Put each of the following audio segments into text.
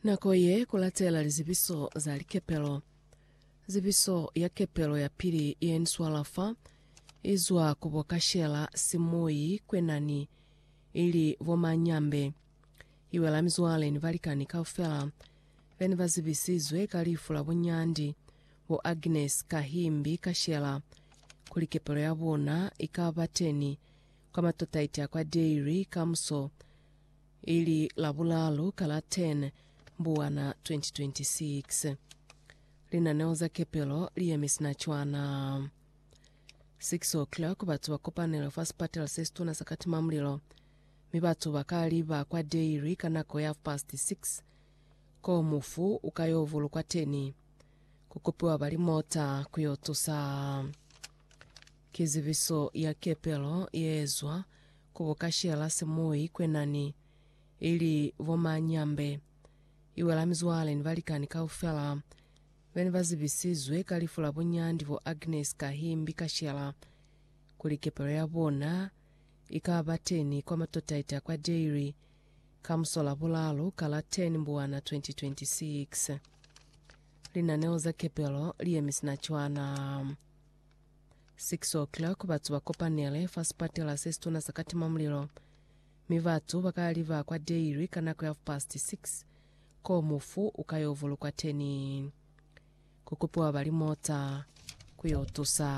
Nako ye kulatela lizibiso za likepelo. Zibiso ya kepelo ya pili yeniswala fa izwa ku bo kashela simuyi kwenani ili bo manyambe. Iwela mizwale ni balikani kaufela bene bazibisizwe ka lifu la bunyandi bo Agnes Kahimbi kashela kuli kepelo ya bona ikaba teni kwa matotaiti a kwa Dairy kamuso ili Labulalu ka la 10 Mbuwana 2026. Linaneo za kepelo li yemi sina cwana. 6 o'clock batu ba kopanela fa sipatela se situna sa Katimamulilo, mi batu ba ka liba kwa dairy ka nako ya half past 6 ko mufu u ka yo vulukwa teni, ku kopiwa ba limota ku yo tusa. Kizibiso ya kepelo ye ezwa Ku bukashela se mu ikwenani, ili bo manyambe, iwela mizwale ni balikani kaufela. Bene ba zibisizwe ka lifu la bunyandi bo Agnes ka himbi kashela, kuli kepelo ya bona ika ba teni kwa Matotaita kwa Dairy ka musola bulalu ka la 10 Mbuwana 2026. Linaneo za kepelo li yemi sina cwana. 6:00, batu ba kopanele fa sipatela se situna sa katimamulilo, mi batu ba ka liba kwa dairy ka nako ya half-past six, koo mufu u ka yo vulukwa teni. Ku kupiwa ba limota ku yo tusa.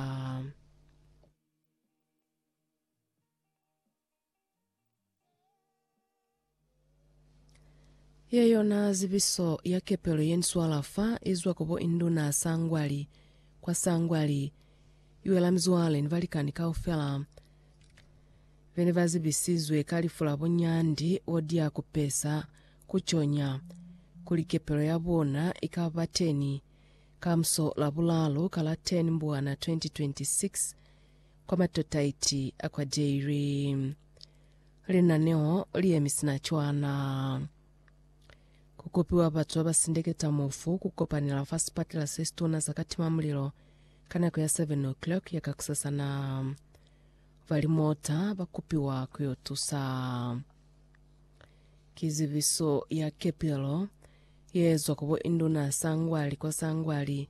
Ye yona zibiso ya kepelo ye ni swala fa izwa ku bo induna sangwali kwa sangwali, iwela mizwale ni balikani kaufela bene ba zibisizwe ka lifu la bunyandi bo dia kupesa ku conya kuli kepelo ya bona ika ba teni kamuso la bulalu ka la 10 Mbwana 2026 kwa matotaiti a kwa Dairy. Linaneo li emi sina cwana. Ku kopiwa batu ba ba sindeketa mufu ku kopanela fa sipatela se situna sa ka timamulilo ka nako ya 7 o'clock ya kakusasana. Ba limota ba kopiwa ku yo tusa. Ki zibiso ya kepelo ye ezwa ku bo Induna Sangwali kwa Sangwali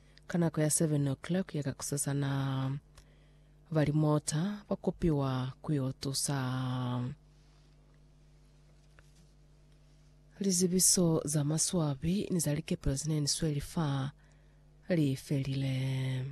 Ka nako ya 7 o'clock ya kakusasana, ba limota ba kopiwa ku yo tusa. Lizibiso za maswabi ni za likepelo ze ne ni sweli fa li felile.